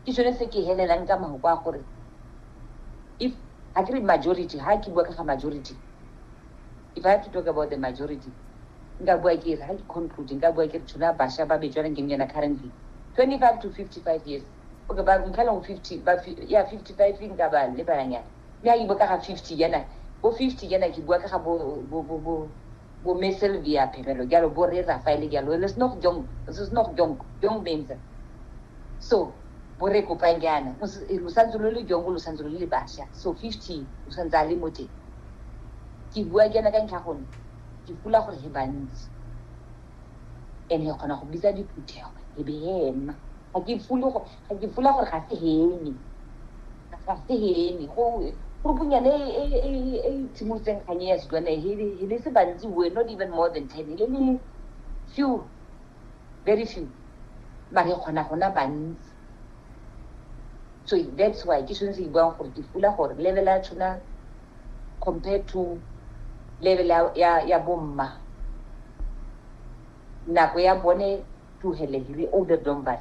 ke sone se ke helelang ka mahoko a gore if ga ke re majority ga ke bua ka ga majority if i have to talk about the majority nka bua ke re ga ke conclude nka bua ke re tsholo ya basha ba bejwanang ke yona currently twenty five to fifty five years okay ba ntlhaleng go fifty ba ya fifty five nka ba lebalanyana mme ga ke bua ka ga fifty yana bo fifty yana ke bua ka ga bo Bo mme Sylvia Phelelo jalo, bo rre Raphael jalo, it is not jong, it is not jong, jong means so bo re kopang jaana lo santse lo le jong lo santse lo le basha so 50 o santse a le mo teng ke bua jaana ka ntlha gone ke pula gore he bantsi and he kgona go bitsa diphuthego e be he nna ga ke fule go Ga ke fula gore ga se hene. Ga se hene. Go rupunyane e e e e tshimolotseng kganye ya Setswana e he he le se bantsi we not even more than ten. Ele le few very few. Mare e kgona gona bantsi. So that's why ke sone se ke buang gore ke fula gore level ya tshona compared to level ya ya, ya bomma nako ya bone tlohele hire older dombas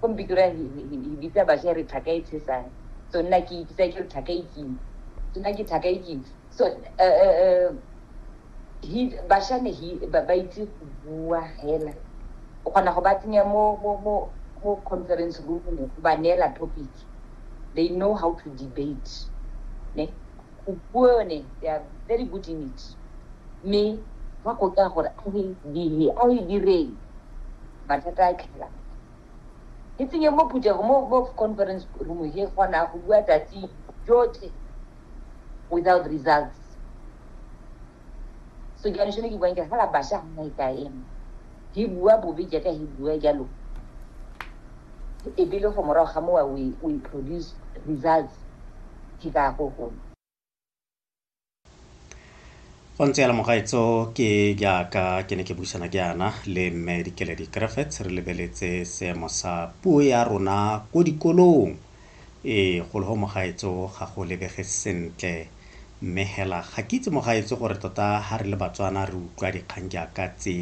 ko mpitura e bitsa basha re tlhaka e tshesane so nna ke bitsa ke re tlhaka e kima so nna ke tlhaka e kima so bashane ba itse go bua hela o kgona go ba tsenya mo mo conference room go ba neela topic they know how to debate ne go bua yone they are very good in it mme ba go ka gore a re dile a re direng mathata a tlhela ke tsenye mo phuthego mo mo conference room he kgona go bua tsatsi jotlhe without results so ke anešone ke buang ke fela basha ga nna e ka ema He bua bobe jaaka he bua jalo e be le go morago ga mowa we we produce results ke ka go gone go ntse ya lemogaetso ke jaaka ke ne ke buisana ke yana le mme dikeledi griffiths re lebeletse seemo sa puo ya rona ko dikolong Ee, golo go mogaetso ga go lebege sentle. Mme hela ga ke itse mogaetso gore tota ha re le Batswana re utlwa dikgang jaaka tse.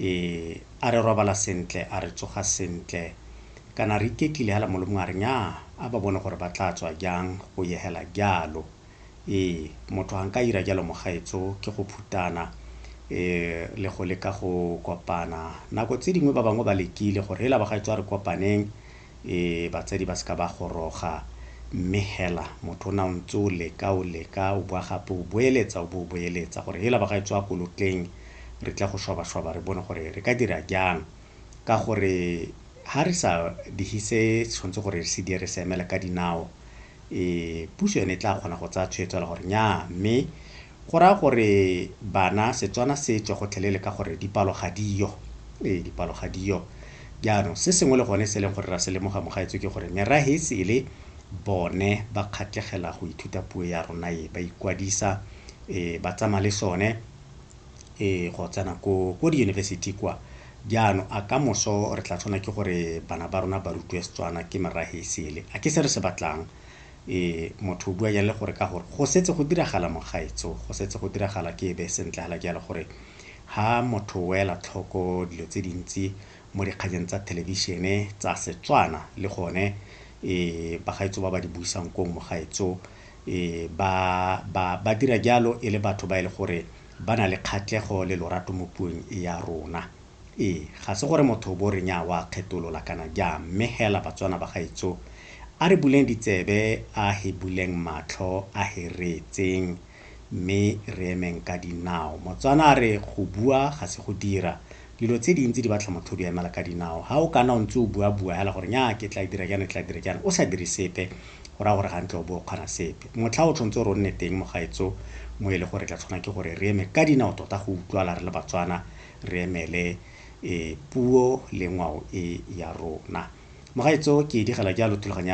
Ee, a re robala sentle, a re tsoga sentle. Kana re iketlile hela Molomong a re nyaa, a ba bone gore ba tla tswa jang go ye hela jalo. Ee, motho ha nka ira jalo mogaetso ke go phutana le go leka go kopana. Nako tse dingwe ba bangwe ba lekile gore hela bagaetso a re kopaneng. e batsadi ba seka ba goroga mme hela motho o na o ntse o leka o leka o boa gape o boeletsa o bo o boeletsa gore hela ba ga e tswa kolotleng re tla go shwabashwaba re bone gore re ka dira jang ka gore ha re sa dihise tshwanetse gore re se di re se emela ka dinao e puso yone e tla kgona go tsaya tshwetso la gore nya mme Go raya gore bana Setswana se tswe gotlhelele ka gore dipalo ga di yo. Ee, dipalo ga di yo. Jaanong, se sengwe le gone se e leng gore ra se lemoga mo gaetsho ke gore merahe e sele bone ba kgatlegela go ithuta puo ya rona e, ba ikwadisa, ee, ba tsamaya le sone, ee, go tsena ko, ko diyunibesithi kwa. Jaanong, a ka moso re tla tshwanela ke gore bana ba rona ba rutiwe Setswana ke merahe e sele? A ke se re se batlang? Ee, motho o bua jang le gore ka gore go setse go diragala mogaetso, go setse go diragala ke e be sentle hala jalo gore ha motho o ela tlhoko dilo tse dintsi mo dikganyeng tsa thelebišene tsa Setswana le gone e bagaetso ba ba di buisang kong mogaetso e ba ba ba dira jalo e le batho ba e le gore ba na le kgatlhego le lorato mo puong ya rona. Ee, ga se gore motho o bo re nyaa wa kgetolola kana jaa, mme hela Batswana ba gaetsho, a re buleng ditsebe, a he buleng matlho, a he reetseng, mme re emeng ka dinao. Motswana a re go bua ga se go dira. Dilo tse dintsi di batla motho o di emela ka dinao. Ha o ka nna o ntse o buabua hela gore nyaa ke tla dira jaana, ke tla dira jaana, o sa dire sepe, go raya gore ga ntle o bo o kgona sepe. Motlha o tshwanetse o re o nne teng mo gaetsho, mo e le gore re tla tshwanela ke gore re eme ka dinao tota go utlwala re le Batswana, re emele puo le ngwao e ya rona. Mogaetso ke digela jalo thulaganyo ya.